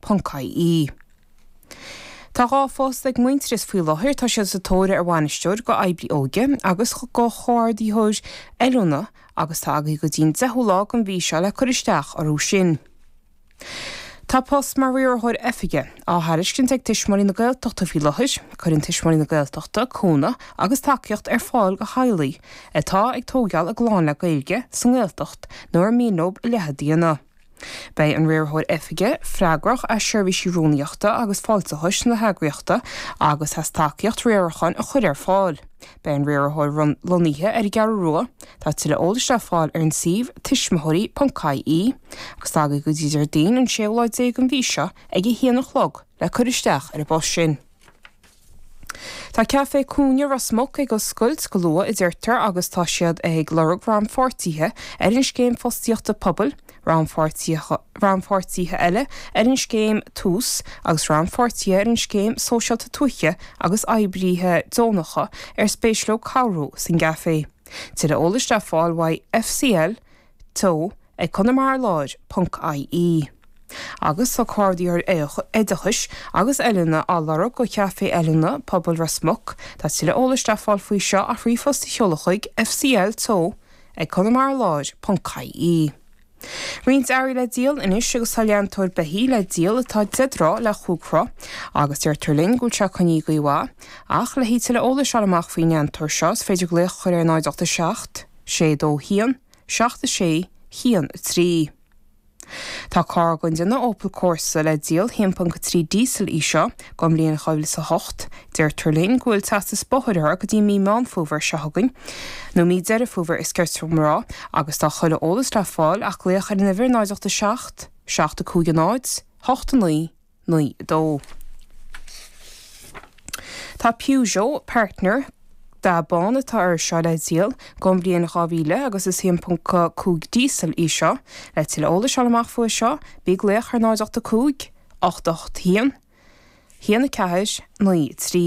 ponc IE. Tá dhá phost ag Muintearas faoi láthair, tá siad sa tóir ar bhainisteoir d'oibrí óige agus do chomhordaitheoir oiliúna agus tá agaibh go dtí'n 10ú lá den mhí seo le cur isteach orthu sin. Tá post mar Riarthóir Oifige á thairiscint ag Tuismitheoirí na Gaeltachta faoi láthair, cuireann Tuismitheoirí na Gaeltachta cúnamh agus tacaíocht ar fáil do theaghlaigh atá ag tóigeáil a gclann le Gaeilge sa nGaeltacht nó ar mian leo a leithéid a dhéanamh. Beidh an Riarthóir Oifige freagrach as seirbhísí Rúnaíochta agus Fáilteachais na heagraíochta agus as tacaíocht riaracháin a chur ar fáil. Beidh an Riarthóir lonnaithe ar an gCeathrú Rua, tá tuilleadh eolais le fáil ar an suíomh tuismitheoirí.ie, agus tá agaibh go dtí Déardaoin an séú lá déag den mhí seo ag a haon a chlog le cur isteach ar an bpost sin. Tá Café Cúinne Ros Muc ag oscailt go luath, a deirtear, agus tá siad ag lorg rannpháirtithe ar an scéim fostaíochta pobail, rannpháirtithe eile ar an scéim Tús agus rannpháirtithe ar an scéim Sóisialta Tuaithe agus oibrithe deonacha ar spéis leo cabhrú san gcaifé. Tuilleadh eolais le fáil, uaidh FCL, Teo, ag Conamara Láir, ponc IE. Agus tá Comhordaitheoir Oideachais agus Oiliúna á lorg do Chaifé Oiliúna Pobail Ros Muc, tá tuilleadh eolais le fáil faoi seo ach ríomhphost a sheoladh chuig, fcl teo, ag Conamara Láir, ponc IE. Roinnt earraí le díol anois agus tá leantóir beithíoch le díol atá deich dtroigh le chúig troigh agus deirtear linn go bhfuil sé ag coinneáil i gcaoi mhaith. Ach le haghaidh tuilleadh eolais fháil amach faoin leantóir seo is féidir glaoch a chur ar 0 8 7 sé dó haon, seacht a sé haon a trí. Tá carr den déanamh Opel Corsa le díol, 1.3 díosal í seo, don bhliain 2008. Deirtear linn go bhfuil teastas bóthair uirthi go dtí mí Meán Fómhair seo chugainn, nó mí Deireadh Fómhair is cirte dhom a rá, agus tá tuilleadh eolais le fáil ach glaoch ar an uimhir 0 8 7 7 5 0 8 9. naoi a dó. Tá Peugeot, partner, dath bán atá air seo le díol don bhliain dhá mhíle agus is haon ponc cúig díosal í seo. Le tuilleadh eolais a fháil amach faoi seo, bí ag glaoch ar náid ocht a cúig, ocht ocht haon, haon a ceathair, naoi a trí.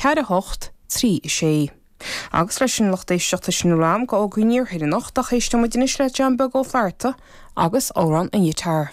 4 8 3 6 Agus leis an lucht éisteachta sin a bhfuil againn go fógraí an Iarthair anocht, ach éisteoidh muid anois le John Beag Ó Flatharta agus Amhrán an Ghiotár.